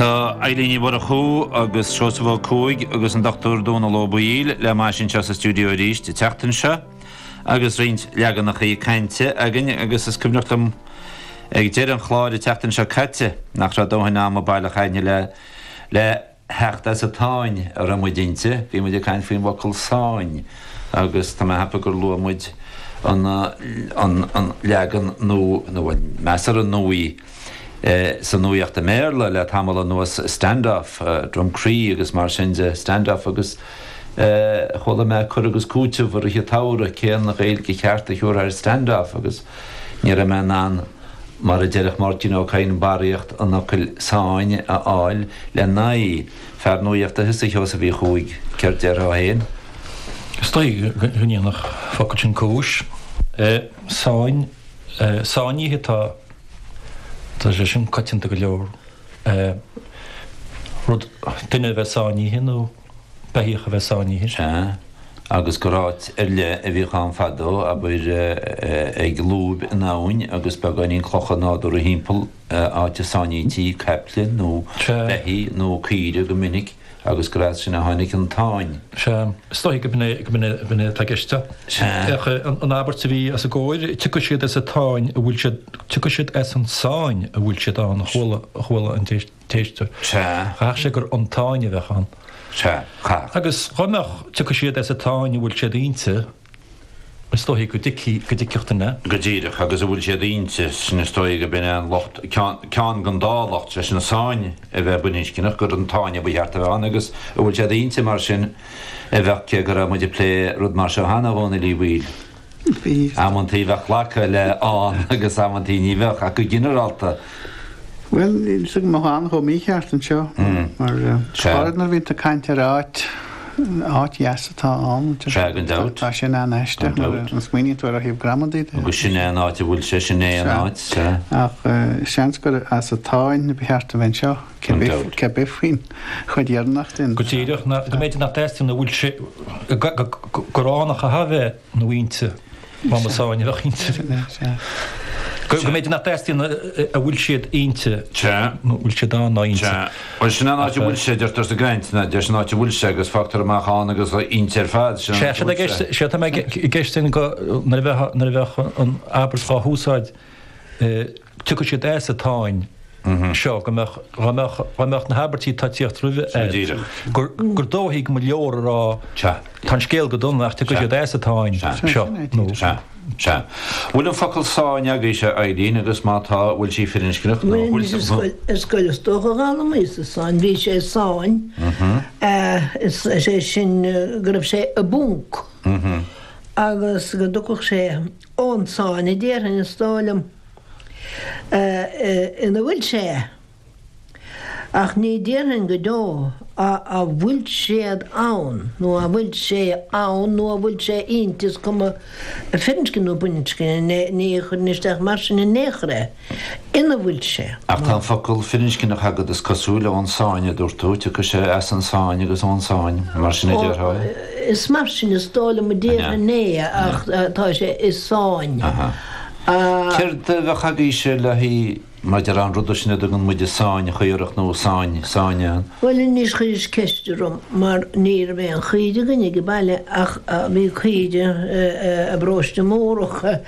Tá Eilín Ní Mhurchú agus Seosamh Ó Cuaig agus an Dr Dónall Ó Baoill le m'ais anseo sa stiúideo arís an tseachtain seo agus roinnt leaganacha cainte againn agus is cuimhneach liom ag deireadh an chláir an tseachtain seo caite nach raibh dóthain ama baileach againne le le theacht as an tsáinn a raibh muid inti. Bhí muid ag caint faoin bhfocal 'sáinn' agus tá mé ag ceapadh gur luaigh muid an leagan nua nó measartha nua sa nuaíocht i mBéarla le tamall anuas, stand-off, Drumcree agus mar sin de, stand-off agus chuala mé cur agus cúiteamh i rith an tsamhraidh, cén Ghaeilge cheart a thiúrfá ar stand-off agus ní raibh mé in ann, mar a déarfadh Máirtín Ó Cadhain, barraíocht an fhocail sáinn a fháil le n-aghaidh. Fear nuaíochta thusa, a Sheosaimh Uí Chuaig, céard déarfá féin? Is dóigh go ndéanfadh an focal sin cúis. Sáinnithe atá. Tá sé sin coitianta go leor, rud, duine a bheith sáinnithe nó beithíoch a bheith sáinnithe. Sea, agus gur áit ar leith a bhíodh ann fadó, abair, ag lúib in abhainn agus beagáinín clocha nádúrtha thimpeall, áit a sáinnítí caiple nó beithígh nó caoire go minic. Agus gur as sin a tháinig an tsáinn. Sea, is dóigh go b'in é atá i gceist. Sea. An abairt a bhí os a gcomhair, Tiocfaidh siad as an tsáinn a bhfuil siad, tiocfaidh siad as an sáinn a bhfuil siad ann, a chuala an t-éisteoir. Sea. Chaithfeadh sé gur an tsáinn a bheadh ann. Sea, chaithfeadh. Agus dhá mbeadh, tiocfaidh siad as an tsáinn a bhfuil siad inti. Is dóichí go dtuigfeadh duine. Go díreach agus a bhfuil siad inti, sin is dóigh go b'in é an locht, ceann den dá locht, sé sin an sáinn a bheith baininscneach, gur an tsáinn a ba cheart a bheith ann agus a bhfuil siad inti mar sin a bheadh, cé go raibh muid ag plé rud mar seo cheana, a Dhónaill Uí Bhaoill. Amantaí bheadh glacadh le ann agus amantaí ní bheadh, ach go ginearálta, Bhuel, níl a fhios agam an mbeadh ann chomh mícheart anseo, mar go háirid nuair a bhíonn tú ag caint ar áit, áit dheas atá ann. Sea, gan dabht. Tá sin an-aisteach, gan dabht. An smaoiníonn tú air ó thaobh gramadaí de? Agus sin é an áit a bhfuil sé, sin é an áit, sea. Ach seans gur as an tsáinn ba cheart a bheith anseo, Gan dabht. cé bith faoin chuid dheireanach sin. Go díreach, go mb'fhéidir, nach dteastaíonn a bhfuil sé, go, go, go, go, gur ann a chaithfeadh a bheith. nó inti. Má ba sáinn a bheadh inti. Go mb'fhéidir nach dteastaíonn a bhfuil siad inti nó a bhfuil siad ann ná inti. Bhuel sin an áit a bhfuil siad, deirtear sa gcaint, ná deir sin an áit a bhfuil siad agus fágtar amach ann agus inti ar fad. Sin an áit a bhfuil siad. Sea, sea, tá mé ag ceist nuair a bheadh an abairt dhá húsáid. dtiocfadh siad as an tsáinn seo, go mbeadh, dá mbeadh, dá mbeadh na habairtí atá ag tíocht roimhe ar. Díreach. gur, gur dóichí go mba leor a rá Sea. tá an scéal go dona ach tiocfaidh Sea. siad as an tsáinn Sea. seo, Sin é, nó. Sea. Sea. Bhfuil an focal sáinn agaibhse, a Eileen, agus má tá, bhfuil sí firinscneach nó Bhuel, bhfuil mise ar sí. scoil, ar scoil is dócha a d'fhoghlaimíos-sa sáinn, bhí sé i sáinn, is is é sin eh, go raibh sé i bponc. Agus go dtiocfadh sé ón sáinn, a déarfainn, is dóigh liom, ina bhfuil sé. Ach ní déarfainn go deo a bhfuil siad ann, nó a bhfuil sé ann, nó a bhfuil sé inti, is cuma firinscne nó baininscne, ní chuirfinn isteach mar sin in aon chor é. ina bhfuil sé. Ach tá an focal firinscneach agat, is cosúil, ón sáinn, a dúirt tú. Tiocfaidh sé as an sáinn agus ón sáinn, mar sin a déarfá? Is mar sin is dóigh liom a déarfainn é, ach tá sé i sáinn. Céard a bheadh agaibhse le haghaidh maidir le an rud sin a dtugann muide sáinn chaorach nó sáinn, sáinn an? Bhuel, anois chuiris ceist orm, mar ní raibh aon chaoire againn ag baile, ach bhí caoire i bParóiste Múrach.